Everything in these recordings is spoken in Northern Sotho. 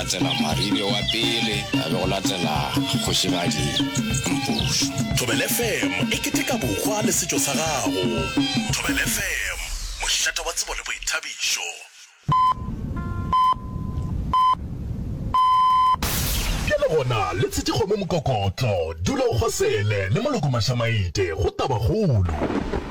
Latela Maribe wa pele, a be go latela Kgošigadi Mpušu. Thobela FM e keteka bokgwa le setšo sa gago. Thobela FM, mošate wa tsebo le boithabišo. Ke le gona le tshiti kgomo mokokotlo, dula o kgosele le moloko mašamaite go tabakgolo.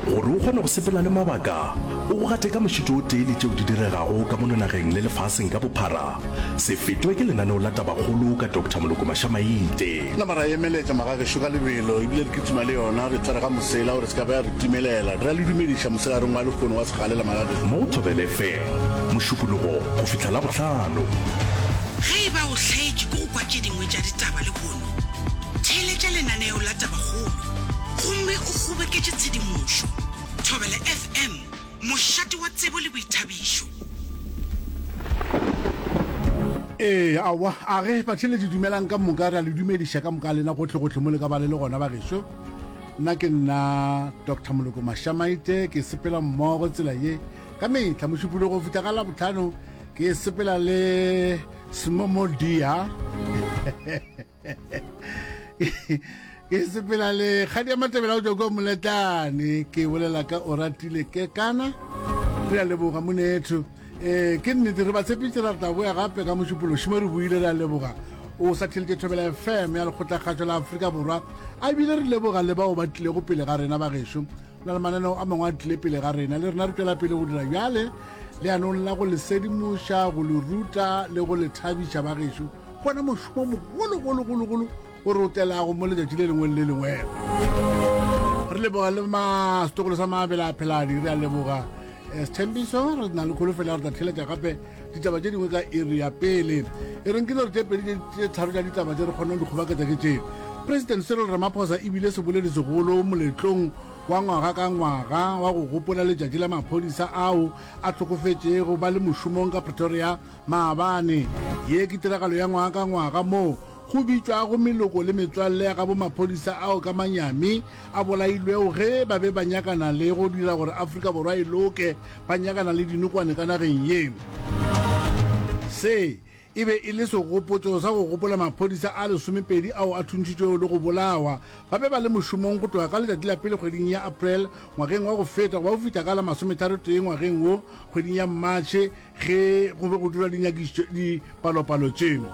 Gore o kgone go sepela le mabaka, o gate ka mošito o tee le tšeo di diregago ka mono nageng le lefaseng ka bophara, Se fetwe ke lenaneo la Tabakgolo ka Doctor Moloko Mashamaite. Nama ra emeletša magagešo ka lebelo ebile re kitima le yona re tshwarega mosela gore se ka ba ya re timelela. Re a le dumediša moselareng wa lekgono wa segalela magagešo. Mo Thobele FM, Mošupologo go fihla Labohlano. Ge e ba o hlaetše ke go kwa tše dingwe tša ditaba lehono, theeletša lenaneo la Tabakgolo gomme o kgoboketše tshedimošo. Thobele FM Mošate wa tsebo le boithabišo. Ee, aowa, a re batheeletši dumelang ka moka, re a le dumediša ka moka lena gohle-gohle mo le ka ba le le gona bagešo. Nna ke nna Dr Moloko Mashamaite, ke sepela mmogo tsela ye ka mehla mošupologo go fihla ka labotlhano ke sepela le smomodia ke sepela le kgadi ya matebela go tswa kwa moletlane ke bolela ka o ratile ke kana re a leboga monetho um ke nnete re ba tshepitse ra tla boya gape ka mošupološi mo re buile re a leboga o sa theletše thobela fm ya lekgotlakgatšo la aforika borwa a bile re leboga le bao ba tlilego pele ga rena bagešo na le mananeo a mangwe a tlile pele ga rena le rena re tswela pele go dira bjale leanong la go le sedimoša go le ruta le go le thabiša bagešo gona mošomo mogologologologolo o re o telago mo letšatši le lengwe le lengwe re leboga le masetokolo sa mabele a pheladi re a leboga eh, sethembiso re na le kgolo fela re tla theletša gape ditaba tše dingwe ka iri ya pele e reng ke dilo tše pedi tše tharo tša ditaba tše re kgonang dikgobaketsa ke tše president cyril ramaphosa ebile seboledi segolo moletlong wa ngwaga ka ngwaga wa go gopola letšatši la maphodisa ao a tlhokofetšego ba le mošomong ka pretoria Maabane. Ye ke tiragalo ya ngwaga ka ngwaga moo go bitšwago meloko le metswalle ya gabo maphodisa ao ka manyami a bolailwego ge ba be ba nyakana le go dira gore Afrika Borwa e loke, ba nyakana le dinokwane ka nageng ye. Se e be e le segopotso sa go gopola maphodisa a lesomepedi ao a thuntšitšwego le go bolawa ba be ba le mošomong go tloga ka letšatši la pele kgweding ya April ngwageng wa go feta gwa go fihla ka la masometharotee ngwageng wo kgweding ya March ge go be go dira dinyakišitšo dipalopalo tšeno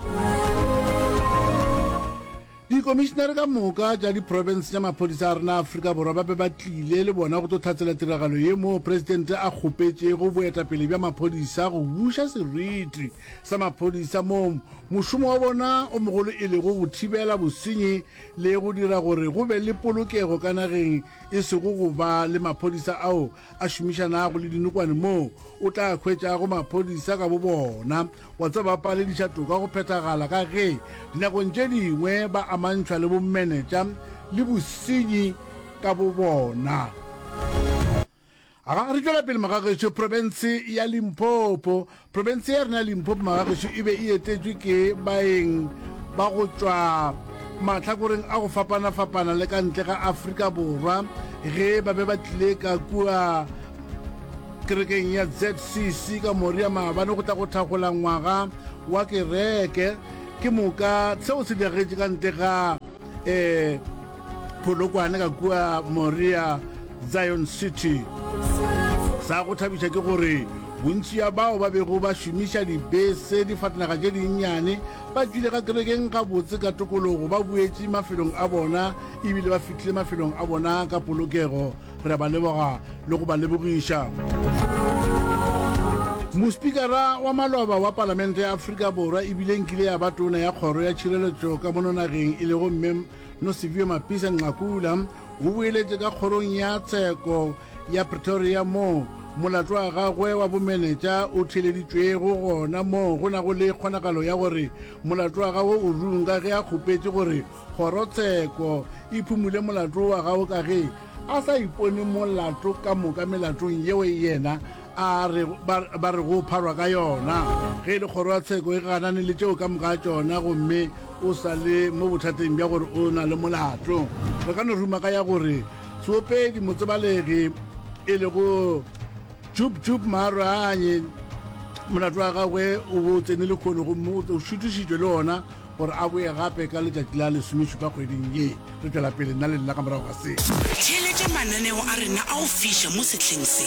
dikomišenare ka moka tša diprofense tša maphodisa a rena aforika borwa ba be ba tlile le bona go tlo tlhatsela tiragalo ye moo presidente a kgopetšego boetapele bja maphodisa go buša seriti sa maphodisa moo mošomo wa bona o mogolo e lego go thibela bosenyi le go dira gore go be le polokego ka nageng e sego go ba le maphodisa ao a šomišanago le dinokwane moo o tla hwetšago maphodisa ka bobona wa tseba ba palediša toka go phethagala ka ge dinakong tše dingwe ba amantšhwa le bomenetša le bosenyi ka bobona Aga re tšwela pele magagetšo, profense ya Limpopo Profense ya rena ya Limpopo magagešo e be e etetšwe ke baeng ba go tšwa mahlakoreng a go fapana-fapana le ka ntle ga Afrika Borwa ge ba be ba tlile ka kua kerekeng ya ZCC ka moria maabane go tla go thagola ngwaga wa kereke ke moka seo se diragetše ka ntle ga um Polokwane ka kua Moria Zion City. Sa go thabiša ke gore bontši ya bao ba bego ba šomiša dibese difatanaga tše dinnyane ba tšwile ka kerekeng gabotse ka tokologo ba boetše mafelong a bona ebile ba fihlile mafelong a bona ka polokego re a ba leboga le go ba lebogiša mospikara wa maloba wa palamente ya afrika borwa ebile nkile ya ba tona ya kgoro ya tšhireletšo ka mononageng e lego mme Nosiviwe Mapisa Nqakula o boeletše ka kgorong ya tsheko ya Pretoria moo molato wa gagwe wa bomenetša o theeleditšwego gona moo go nago le kgonagalo ya gore molato wa gagwe o runga ge a kgopetše gore kgorotsheko e phumule molato wa gagwe ka ge a sa ipone molato ka moka melatong yeo yena a re ba, ba re go pharwa ka yona ge e le kgoro ya tsheko e ganane le tšeo ka moka tšona gomme o sa le mo bothateng bja gore o na le molato re ka no ruma ka ya gore seopedi motsebalegi e lego jup jup maaranye molato wa gagwe o bo o tsene le kgono gomme o šutišitšwe le ona gore a boye gape ka letšatši la lesomešupa kgweding ye re tšwela pele nna le nna ka morago ga se theeletša mananeo a rena a go fiša mo sehleng se